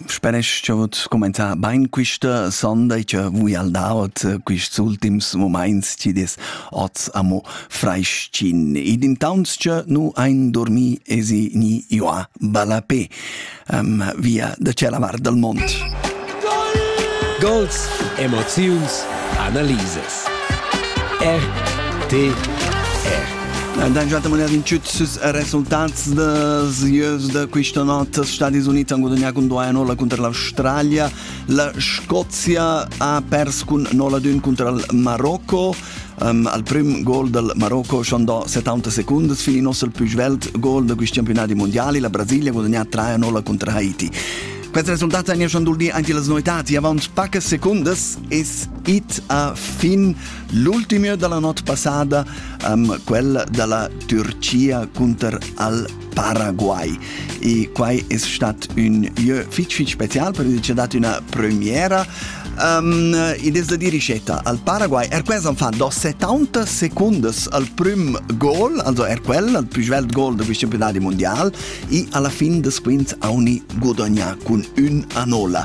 Spanisch cha hoz cumainzà bain quista sonda e cha vuia'l da'ot quists ultims mumaints chi'd es hoz amo frais-chin. Ed intaunt cha nu hain dormì esi gni ioà ballapè via da tschella vart dal mond. Gols, emoziuns, analisas. RTR Da ün'altra moeda in tschüt süs resultats da sieus da quista not als Stadis Uniti han gudagnà cun 2 a 0 cunter l'Australia. La Scozia ha pers cun 0 ad 1 cunter il Marocco. Um, al prim gol del Marocco schon da 70 seconden fin in nostro più svelt gol da questi campionati mondiali. La Brasilia ha guadagnato 3 a 0 contro Haiti. Questi risultati hanno schon duldi anche le noitati. Avanti poche secondi is it a fin. L'ultima dalla not passada, um, quella dalla Türcia cunter al Paraguay. E quai è stat un lieu fitch fitch special per il dat una premiera Um, e des la di ricetta al Paraguay er questo fa do 70 secondes al prim gol also er quel al più svelt gol del campionati mondial e alla fin des quints auni guadagna con un anola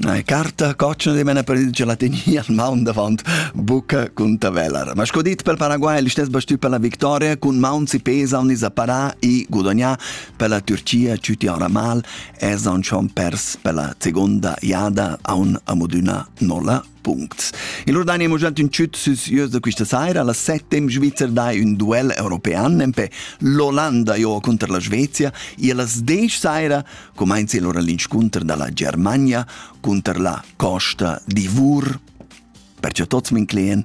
Eine Karte coccian di mena per il gelatini al maun davant bucca cun tavelar. Ma sco dit per Paraguay, l'istes bastü per la victoria cun maun si pesa on is apparà i gudagnà per la Turchia ciuti ora mal es on schon pers per la seconda iada a un amodüna nolla puncts. Il Ordania mo giant ün tschüt süs ieus da quista saira, alla settem Svizzer dai ün duel european, nempe l'Olanda jo contro la Svezia, e alla sdech saira comenza il ora l'inscunter dalla Germania contro la Costa d'Ivur. Perciò tots min clien,